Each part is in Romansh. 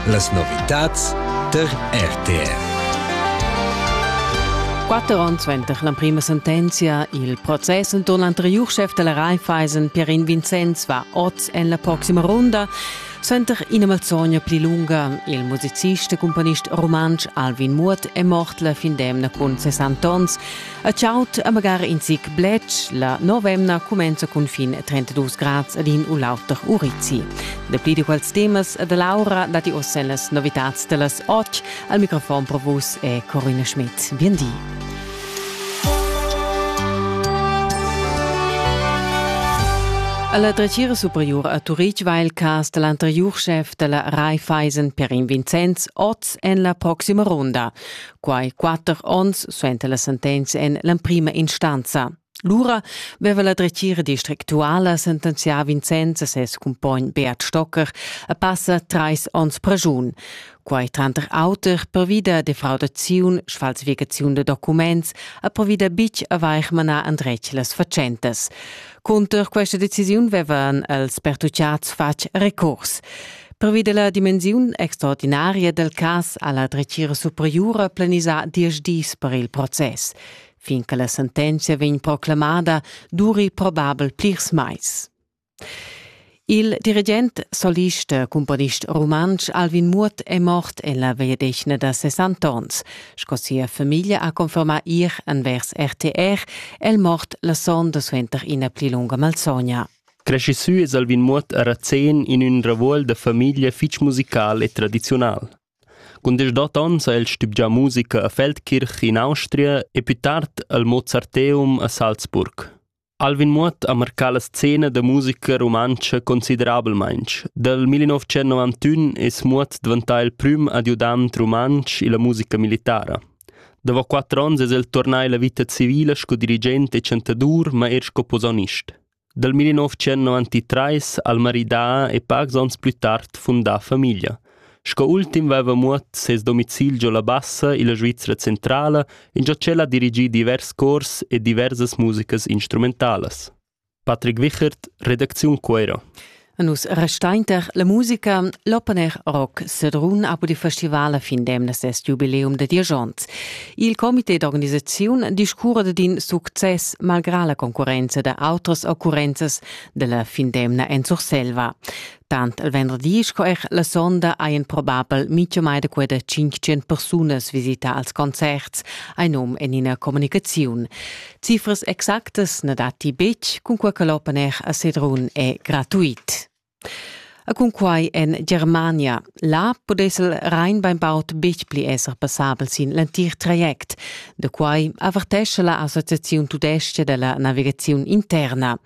Las novitads tar RTR. 4 onns suenter l'emprima sentenzia, il process enturn l'anteriur chef della Raiffeisen, Pierin Vincenz, va oz en la proxima runda. Suenter ina malzogna pli lunga, il musicist e componist rumantsch Alvin Muot è mort la fin d'emna cun 60 onns. A chaud e magari in zic bletsch, la novemna cumenza cun fin 32 grads ad in u l'auter urizi. Dapli di quels temas e da Laura datti ossa las novitads da las 8. Al microfon pro vus è Corinna Schmidt. Bien di. La dretgira superiura a Turitg va il cas da l'anteriur schef da la Raiffeisen Perin Vincenz oz en la proxima runda. Quai quatter onns suenter la sentenza en l'emprima instanza. Lura veva la dretgira districtuala sentenzià Vincenz e ses cumpogn Beat Stocker a passa trais onns pragiun. Quai tranter auter pervi da defraudaziun, sfalsificaziun da documents e pervi da bitg avair manà andretg las fatschentas. Cunter questa decisiun vevan els pertucciats fatg recurs. Pervi della dimensiun extraordinaria del cas ha la dretgira superiura planisà diesch dis per il process. Fin che la sentenza vegn proclamada, duri probabel plirs mais. Il dirigent, solist e cumponist rumantsch Alvin Muot è mort en la vegliadetgna da 60 onns. Sco sia famiglia ha confermà ir envers RTR, è el mort la sonda suenter ina pli lunga malsogna. Cresci sü es Alvin Muot a Razén in ün ravuol da famiglia fich musical e tradiziunal. Cun deschdot ons ha el stübgià musica a Feldkirch in Austria e più tard al Mozarteum a Salzburg. Alvin Muoth ha marcà la scena da musica rumantscha considerablamaintg. Dal 1991 es Muoth dvantà il prüm adiudant rumantsch illa musica militara. Davo quatter ons es el turnà illa vita civila sco dirigent e chantadur, ma eir sco posaunist. Dal 1993 ha'l maridà e pacs ons plü tard fundà famiglia. Sco ultim veva Muot ses domicil giò la Bassa illa Svizra centrala ingio ch'el ha dirigì divers cors e diversas musicas instrumentalas. Patrick Wichert, redacziun Cuero. A nus restainter la musica, l'open air rock Sedrun ha pudì festival a fin d'emna ses jubileum da dirigents. Il comité d'organisaziun discurra da din success malgrà la concurrenza da autras occurrenzas della fin d'emna en Surselva. Tant il venderdi sco eir la sonda hajan probabel mincha mai da queda 500 persunas visità als concerts, hai nom en ina communicaziun. Cifras exactas na datti betg, cun quai che l'open air a Sedrun è gratuit. E cun quai en Germania Là pudess el rein bainbaud betg pli esser passabel sin l'entir traject. Da quai avertescha la Associaziun tudestga da la navigaziun interna.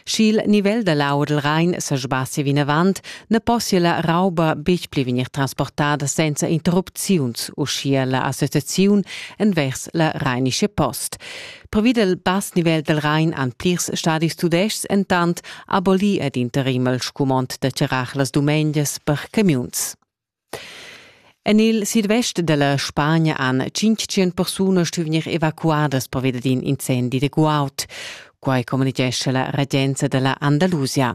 Sch'il nivel da l'aua dal Rhein sa sbassia vinavant, na possia la rauba betg pli vegnir transportada senza interrupziuns, uschia la associaziun envers la Rheinische Post. Pervi del bass nivel del Rhein han plirs stadis tudestgs entant abolì ed interim il scumond da charrar las dumengias per camiuns. En il sidvest della Spagna han 500 persunas stuvenir evacuadas pervia d'in incendi de guaud. Quai communitgescha la regenza della Andalusia.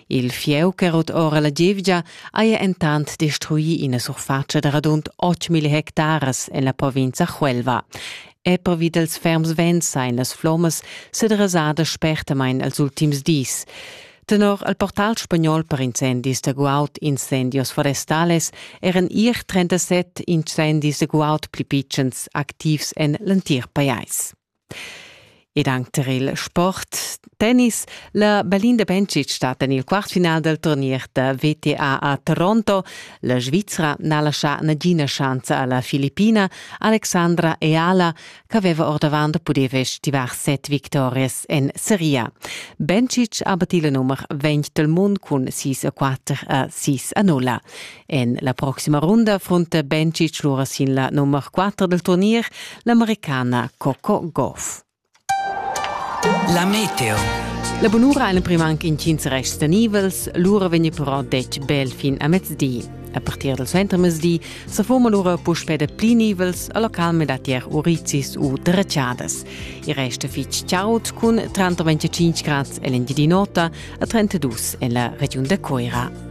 Il fieu che rot ora la gievgia haja entant destruì ina surfatscha da radund 8.000 hectares en la provincia Huelva. e pervi dals ferms vents sain las flommas sederasadas spertamain els ultims dis. Tenor al portal spagnol per incendis da guaud incendios forestales eran ier 37 incendis da guaud pli pitschens activs en l'entir pajais. ed anc tar il sport tennis. La Berlin de Bencic stat en il quartfinal dal turnier da VTA a Toronto. La Svizra n'ha laschà nagina schanza a la Filippina Alexandra Eala ch'aveva ordavant pudì festivar set victorias en seria. Bencic ha battì la nummer 20 del mund cun 6 a 4 a 6 a 0. En la proxima runda frunta Bencic lura sin la nummer 4 del turnier, l'americana Coco Goff. La meteo. La bunura ein prim anche incins rests tenibels, lura vegni però detg bel fin a mezdi. A partir del suentermezdi se forma lura puspè da pli nivels a localme da tier uricis u dreciadas. Il resto fitg chaud cun 35 grads e l'engiadinota a 32 en la regiun de Coira.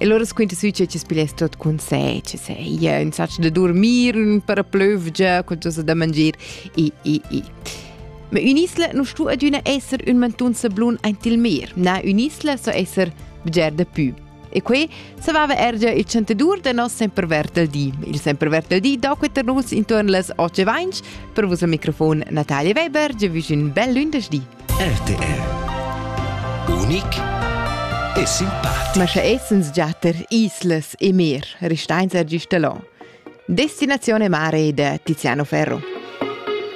E allora squinta sü che chi's pigliess tot cun sé, che se ia insaccio da dormir, ün paraplövgia, qualcosa da mangir, i, i, i. Ma ün'isla non stu adüna esser ün mantun sablun aint il mer, na, ün'isla so esser bger da pü. E que savava ergia il chantadur da nos sempre vert al di. Il sempre vert al di do queter nus intorn las 8.20 per vos al microfon Natalia Weber, ge vüsch ün bel lündesch di. RTR Unic e simpatico. Ma sche essens già ter Islas e Mer, restains er gist allò. Destinazione mare da Tiziano Ferro.